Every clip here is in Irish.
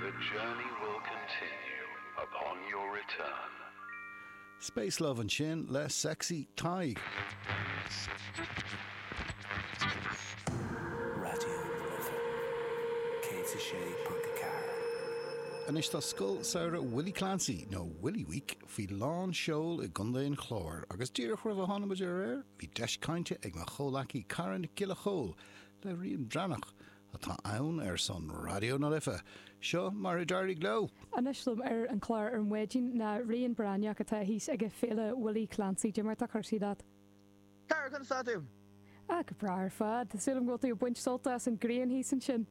The journey will continue upon your return. Space Love ansin le Sexy Tadhg. Anois tá Scoil Samhraidh Willie Clancy, nó Willie Week, faoi lán seoil i gContae an Chláir agus díreach roimh a tháinig muid ar aer bhí deis cainte ag mo chomhleacaí Cara Nic Giolla Chomhaill le Rían Breathnach atá ann ar son Raidió na Life. Seo mar a d'éirigh leo. Anois liom ar an chlár ar maidin ná Rían Breathnach atá thíos aige Féile Willie Clancy. Dé mar atá cúrsaí leat? Cara, conas tá tú? Ah, go breá ar fad. Tá súil agam go bhfuil tú ag baint sult as an ghrian thíos ansin.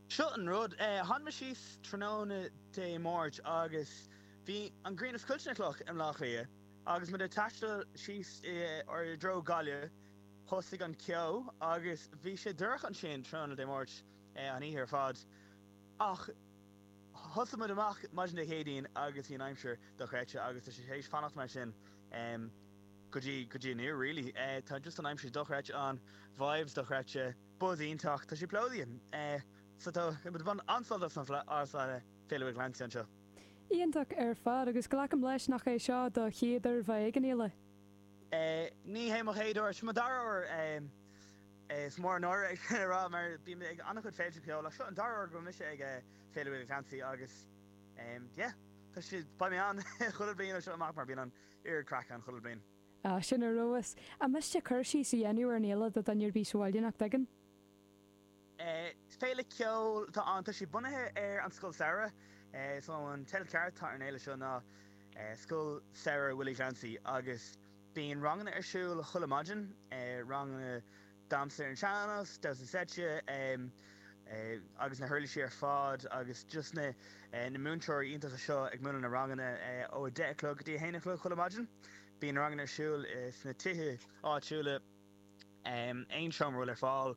Seo an rud, tháinig mé síos tráthnóna Dé Máirt agus bhí an ghrian ag scoilteadh na gcloch i mBleá Cliath agus muid ag taisteal síos i dtreo Gaillimh. Thosaigh an ceo agus bhí sé dorcha ansin tráthnóna Dé Máirt, an oíche ar fad. Ach thosaigh muid amach maidin Dé Céadaoin agus bhí an aimsir dochreidte agus tá sé tar éis fanacht mar sin go dtí go dtí inniu really. Tá just an aimsir dochreidte ann, vibes dochreidte, buzz iontach, tá sé plódaithe. So tá muid ag baint an-sult as an Féile Willie Clancy anseo. Iontach ar fad agus glacaim leis nach é seo do chéad uair bheith ag an fhéile? Ní hé mo chéad uair. Seo mo dara huair. Is mór an náire é sin a rá mar bím ag an-chuid féilte ceoil ach seo an dara huair go bhfuil mise ag Féile Willie Clancy agus yeah, tá sé, beidh mé ann chuile bhliain ó seo amach mar bíonn an oiread craic ann chuile bhliain. Ah, sin ar fheabhas. An miste cur síos a dhéanamh ar an fhéile do dhuine ar bith sa bhaile nach dtuigeann? Féile ceoil atá ann. Tá sé bunaithe ar an Scoil Samhraidh so an teideal ceart atá ar an fhéile seo ná Scoil Samhraidh Willie Clancy agus bíonn ranganna ar siúl chuile maidin, ranganna damhsa ar an sean-nós, damhsa seite agus na huirlisí ar fad agus just na múinteoirí iontacha seo ag múineadh na ranganna ó a deich a chlog go dtí a haon a chlog chuile maidin. Bíonn na ranganna ar siúl sna tithe áitiúla. Aon seomra a bhfuil ar fáil,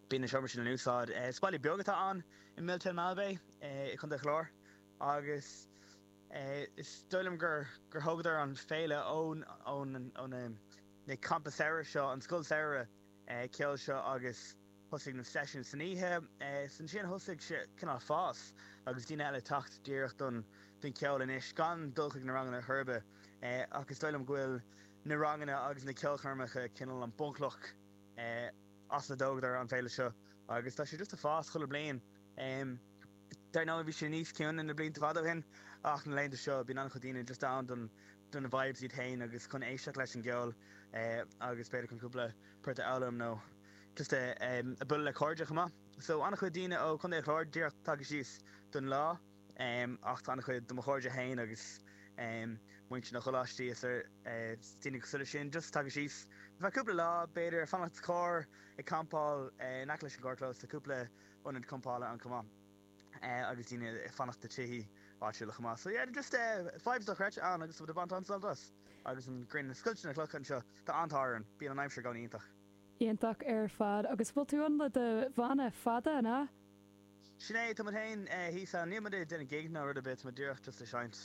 bíonn na seomraí sin in úsáid. Is baile beag atá ann i Miltown Malbay i gContae an Chláir agus is dóigh liom gur thógadar an féile ó na campa samhraidh seo, an scoil samhraidh ceoil seo agus. Thosaigh na seisiúin san oíche, 's ansin thosaigh sé cineál fás agus daoine eile teacht díreach don cheol anois gan dul chuig na ranganna ar chor ar bith. Ach is dóigh liom go bhfuil na ranganna agus na ceolchoirmeacha cineál an bunchloch as a dtógadar an féile seo agus tá sé just ag fás chuile bliain. Dar ndóigh bhí sé níos ciúine na blianta fada ó shin ach na laethanta seo bíonn an-chuid daoine just ann don na vibes iad féin agus chun éisteacht leis an gceol agus b'fhéidir chun cúpla port a fhoghlaim nó just eh em a bualadh le cairde chomh maith so an-chuid daoine ó Chontae an Chláir díreach tagtha síos don lá em ach tá an-chuid de mo chairde féin agus em muintir na gcoláistí is ar eh daoine cosúil leis sin just tagtha síos ar feadh cúpla lá b'fhéidir ag fanacht sa charr ag campáil eh in aice leis an gcarrchlós tá cúpla ionad campála ann chomh maith eh agus daoine ag fanacht i tithe áitiúla chomh maith so yeah just eh vibes dochreidte ann agus muid ag baint an-sult as agus an ghrian ag scoilteadh na clocha anseo tá an-tádh orainn bíonn an aimsir go hiontach. Iontach ar fad. Agus bhfuil tú ann le do bhanna fada, an ea? Sin é, tá muid féin thíos ann. Níl muid ag déanamh gig ná rud ar bith, tá muid díreach just ag seinnt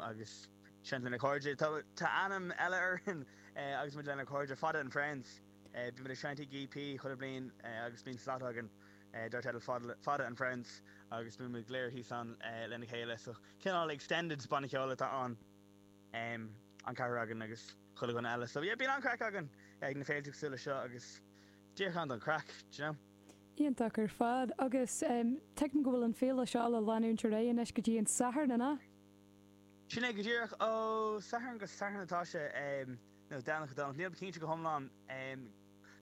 agus seinnt lenár gcairde. Tá ainm eile orainn agus muid lenár gcairde, Fada and Friends. Bíonn muid ag seinnt ag EP chuile bhliain agus bíonn slot againn dar teideal Fada, Fada and Friends agus bíonn muid go léir thíos ann lena chéile. So cineál extended banna ceoil atá ann, an ceathrar againn agus. Chuile dhuine eile. So yeah bíonn an-craic againn ag na féilte cosúil leis seo agus díreach ann don chraic, d'you know. Iontach ar fad. Agus tuigim go bhfuil an féile seo le leanúint ar aghaidh anois go dtí an Satharn, an ea? Sin é go díreach. Ó Satharn go Satharn atá sé, nó Domhnach go Domhnach. Nílim cinnte go hiomlán.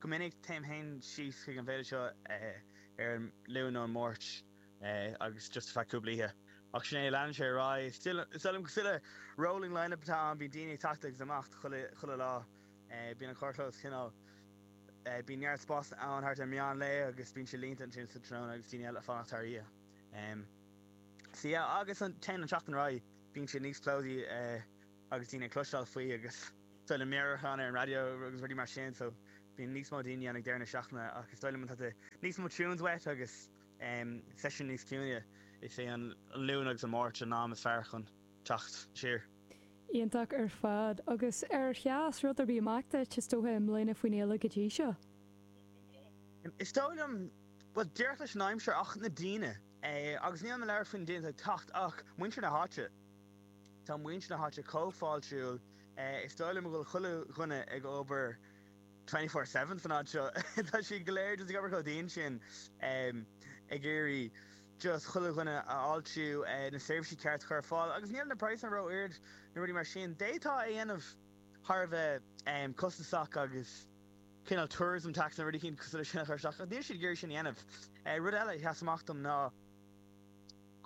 Go minic téim féin síos chuig an bhféile seo ar an Luan nó an Mháirt. agus just ar feadh cúpla oíche. Ach sin é, leanann sé ar aghaidh. Is dóigh liom go bhfuil rolling line-up atá ann, bíonn daoine ag teacht agus imeacht chuile lá. Bíonn an carrchlós cineál. Bíonn neart spásanna ann thart ar meán lae agus bíonn sé líonta ansin sa tráthnóna agus daoine eile ag fanacht thar oíche. So yeah, agus mar a théann an tseachtain ar aghaidh, bíonn sé níos plódaí agus daoine ag cloisteáil faoi agus is dóigh liom meabhrúcháin ar an raidió agus rudaí mar sin so bíonn níos mó daoine ann ag deireadh na seachtaine ach is dóigh liom má tá níos mó tunes uait agus seisiún níos ciúine. Is é an Luan agus an Máirt an am is fearr chun teacht siar. Iontach ar fad. Agus ar sheas rud ar bith amach duit, is dócha, i mbliana faoin fhéile go dtí seo? Is dóigh liom, bhuel, díreach leis an aimsir ach na daoine. Agus nílim ag labhairt faoi na daoine atá ag teacht ach muintir na háite. Tá muintir na háite chomh fáiltiúil. Is dóigh liom go bhfuil chuile dhuine ag obair twenty four seven san áit seo. Tá siad go léir just ag obair chomh dian sin ag iarraidh just chuile dhuine a fháiltiú, na seirbhísí ceart a chur ar fáil agus níl na praghsanna ró-ard nó rudaí mar sin. D'fhéadfá é a dhéanamh thar a bheith costasach agus cineál tourism tax nó rudaí cosúil leis sin a chur isteach ach níl siad ag iarraidh sin a dhéanamh. Rud eile a sheas amach dom ná,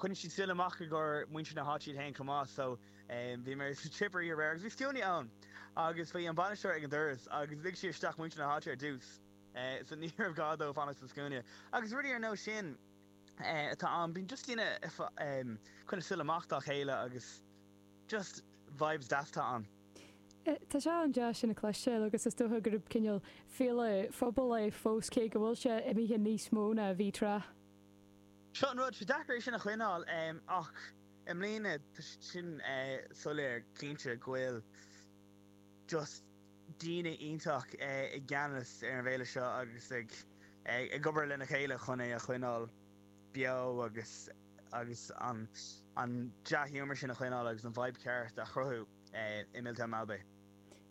Choinnigh siad súil amach i gcomhair muintir na háite iad féin chomh maith so bhí mé sa Tipperary aréir agus bhí scuainí ann agus bhí an bainisteoir ag an doras agus lig sé isteach muintir na háite ar dtús so ní raibh gá dóibh fanacht sa scuaine agus rudaí ar nós sin atá ann bíonn just daoine ag coinneáil súil amach dá chéile agus just vibes deas atá ann. Tá sé an-deas sin a chloisteáil agus is dócha gurb cineál féile phobail é fós cé go bhfuil sé imithe níos mó ná a bhí tráth. Seo an rud, tá sé deacair é sin a choinneáil ach i mbliana tá sé sin soiléir go cinnte go bhfuil just daoine iontach i gceannas ar an bhféile seo agus ag obair lena chéile chun é a choinneáil beo agus agus an dea-ghiúmar sin a choinneáil agus an vibe ceart a chruthú i Milltown Malbay.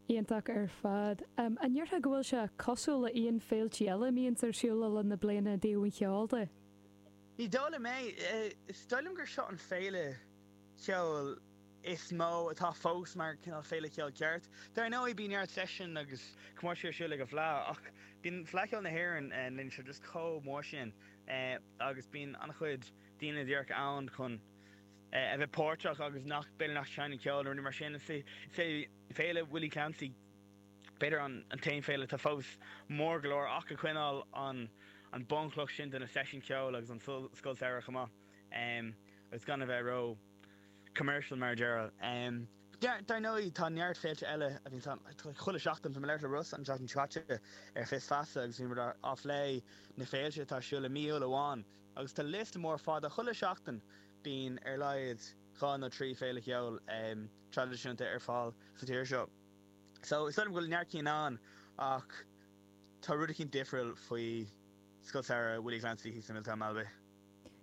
Iontach ar fad. An ndéarfá go bhfuil sé cosúil le haon féiltí eile a bhíonns ar siúl le linn na bliana i dtaobh an cheoil de? Ní dóigh liom é. Is dóigh liom gur seo an féile cheoil is mó atá fós mar cineál féile cheoil ceart. Dar ndóigh bíonn neart seisiún agus comórtaisí ar siúl ag an bhFleadh ach bíonn Fleadh Cheoil na hÉireann na laethanta seo just chomh mór sin agus bíonn an-chuid daoine díreach ann chun a bheith páirteach agus nach b'fhéidir nach seinneann ceol nó rudaí mar sin. Is é Féile Willie Clancy b'fhéidir an t-aon féile atá fós mór go leor ach ag coinneáil an bhunchloch sin de na seisiúin cheoil agus an scoil samhraidh chomh maith agus gan a bheith ró commercial mar a déarfá. Dar ndóigh tá neart féilte eile a bhíonn ann chuile sheachtain. Bhí mé le Ross an tseachtain seo caite ar Fios Feasa agus bhí muid ag plé na féilte atá ar siúl i mí Iúil amháin agus tá liosta mór fada. Chuile sheachtain bíonn ar laghad dhá nó trí féile cheoil. traidisiúnta ar fáil sa tír seo. So, is dóigh liom go bhfuil neart cinn ann ach tá rud eicínt difriúil faoi Scoil Samhraidh Willie Clancy thíos i Milltown Malbay.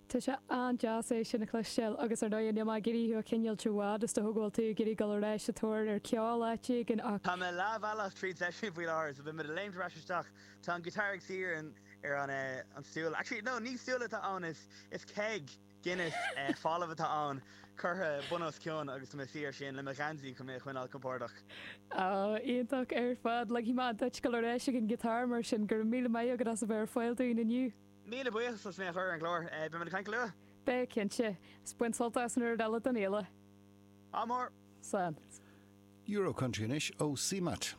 Tá sé an-deas é sin a chloisteáil agus ar ndóigh níl mé ag iarraidh thú a choinneáilt i bhfad is dócha go bhfuil tú ag iarraidh dul ar ais sa tóir ar ceol áit éigin ach Tá mé leathbhealach tríd seisiún faoi láthair so beimid ag léimt ar ais isteach. Tá an guitar ag suí ar an an stúl. Actually, no, ní stúl atá ann is is keg! Guinness falamh atá ann, curtha bun os cionn agus tá mé ag suí air sin le mo gheansaí chun mé a choinneáil compordach. Oh, iontach ar fad. Ligfidh mé duit dul ar ais ag an ghiotár mar sin. Go raibh míle maith agat as a bheith ar fáil dúinn inniu. Míle buíochas as mé a chur ar an gclár. Beimid ag caint go luath. Beidh, cinnte. Is bain sult as an gcuid eile den fhéile. Ádh mór. Slán. Euro Country anois ó CMAT.